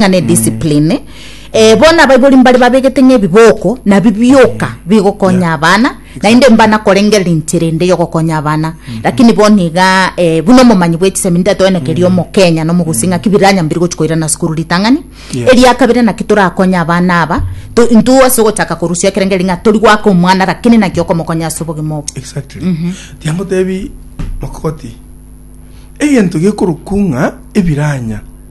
ng'a ne discipline eh, bono abaibori mbare babegete ng'a ebiboko nabi bioka bigokonya abana naende mbana korengerera inche rende yogokonya abana lakini bono iga eh, buna omomanyi bwechisemi ntatoenekeria omokenya na omogusi ng'a ki biranya mbiri gochi koirana sukuru ritang'ani Yeah. eria kabere naki torakonye abana aba to- intwe ase ogochaka korusia ekerengeri ng'a tori gwaka omwana lakini naki okomokonya ase obogima obo exactly tiangotebi mokogoti egento gekorokwa ng'a ebiranya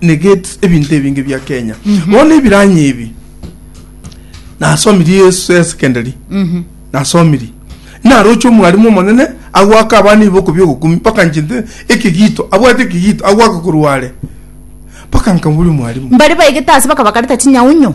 negate ebinto ebinge bia kenya bono ebiranya ebi nasomiri yesu ya secondary nasomiri naroche omwalimu omonene agwaka abana iboko biogokumi mpaka nchinte ekigito abwate ekigito agwaka korware mpaka nkaburia mwalimu mbari baigete ase bakabakareta chinyaunyo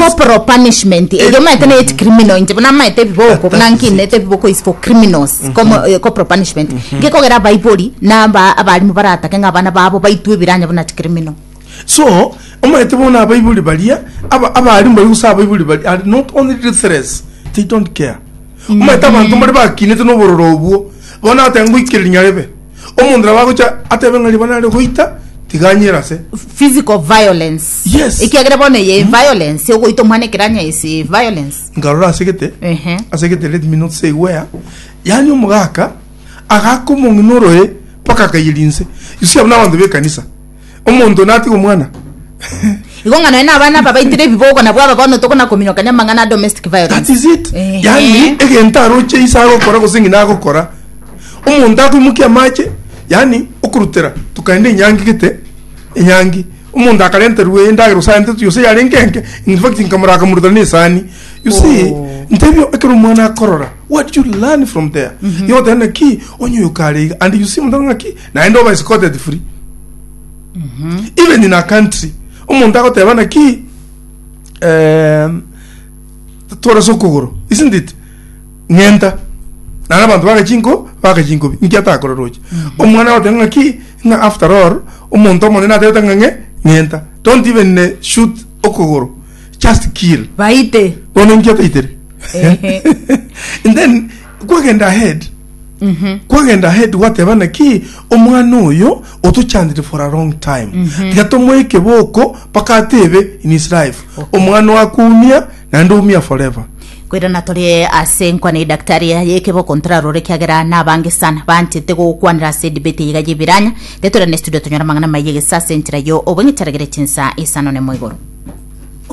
Corporal punishment eria omaete na age criminal inche bono amaete ebiboko buna nkinete ebiboko is for criminals Como- eh, corporal punishment ngekogera abaibori na aba- abarimu baratake ng'a abana babo baitwe ebiranya buna chi criminal so omaete bono abaibori baria aba- abarimu baria gose abaibori baria are not only ruthless they don't care omaete abanto mbare bakinete na obororo obwo bono agotenga ngoikera rinyarebe omonto nabo agocha atebe ng'a riba nare goita tiga anyere ase physical violence Yes. ekiagera bono eye violence ogoita omwana ekeranya is eh, violence nkarora ase gete Ehe. ase gete let me not say where yaani omogaka agaka omong'ina oroe mpaka akaiyeri inse you see abwo nabanto b'ekanisa Omonto natige omwana. Igo ng'a nonye nabana aba baitire ebibogo nabwo aba bono tokona kominyokania amang'ana a domestic violence. That is it. Eh. Yani egento aroche isa agokora gose ng'ina agokora. Omonto akoimokia amache, yani okorutera tukaenda enyangi gete, enyangi. Omonto akarenterwa endagera osarente tu yose yarenge enke. In fact nkamora akamurutera na esani. You see, oh. ntebio ekero omwana akorora what you learn from there. Mm -hmm. Yotenda ki onyoyo kare and you see mutana ki naende oba escorted free even in a country omonto agoteba naki em, twarase okogoro isn't it ng'enta nana abanto bagachinko bagachinkobi nki atakorera oche omwana agoteba ng'aki ng'a after all omonto omonene atebete ng'a ng'e ng'enta don't even eh, shoot okogoro just kill baite bono inki ataitere Ehe. and then kwagenda ahead kwagenda ahead gwateba naki omwana oyo otochandire for a long time tiga tomoe ekeboko mpaka atebe in his life omwana wakoumia naende oumia forever Kwirana tore ase nkwana ya daktari yekeboko ntorarore kiagera nabange sana banchete gogokwanera ase debate yiga yebiranya tetorane studio tonyore amang'ana maye gesa ase enchera yo obweng'etaragere chinsa isano nemo igoro